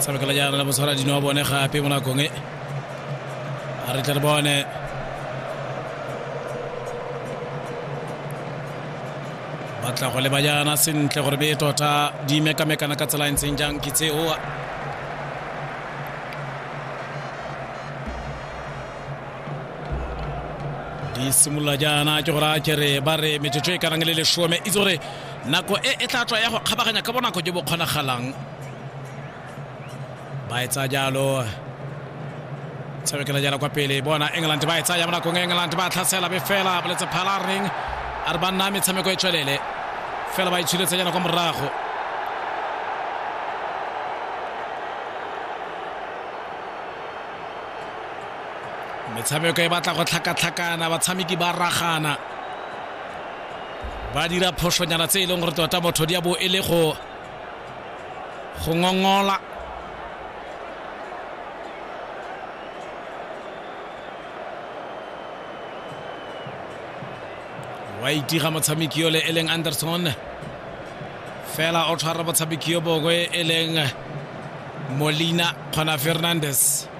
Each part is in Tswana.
tshamekela jaana le mosara dino wa bone gape mo nakong e a re tle re bone ba tla go leba jaana sentle gore be tota di mekamekana ka tsela e ntseng jang ke tseo di simolola jaana ke gore a kere ba re metsotso e karang le lesome itse gore Nako e e tla tswa ya go kgabaganya ka bonako jo bo kgonagalang. Ba e tsaya jalo. Tshamekela jalo kwa pele. Bona England ba e tsaya mo nakong e England ba tlhasela be fela boletse phalareng. A re ba nna metshameko e tswelele. Fela ba itshuletse jalo kwa morago. metshameko e batla go tlhakatlhakana batshameki ba ragana ba dira phošonyana tse e leng gore tota motho di a bo e le go go ngongola wa itiga motshameki yole e leng anderson fela o tshwara motshameki yo bongwe e leng molina kgona fernandes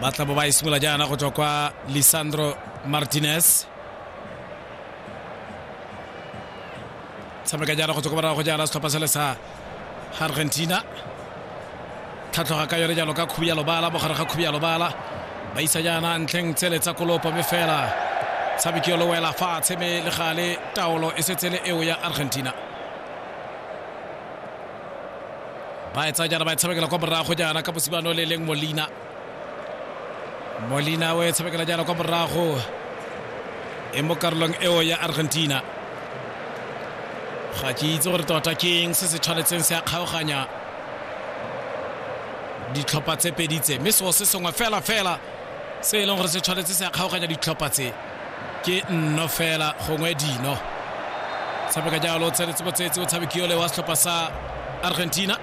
ba tla bo ba e simolola jaana go tswa kwa lisandro martinez tshameka jaana go tswa kwa morago go jaana setlhopha sele sa argentina tlhatlhoga ka yone jalo ka khubi ya lobala mogare ga khubi ya lobala ba isa jaana ntlheng tsele tsa kolopo mme fela tshameki yo lo wela fatshe mme le gale taolo e setsele eo ya argentina ba e tsaya jaana ba e tshamekela kwa morago jaana ka mosibano le leng molina molina o e tshamekela jaana kwa morago e mo karolong eo ya argentina ga ke itse gore tota keng se se tshwanetseng se a kgaoganya ditlhopha tse pedi tse mme seo se sengwe fela fela se e leng gore se tshwanetse se a kgaoganya ditlhopha tse ke nno fela gongwe dino tshameka jalo o tsenetse botsetsi o tshamekiole wa setlhopha sa argentina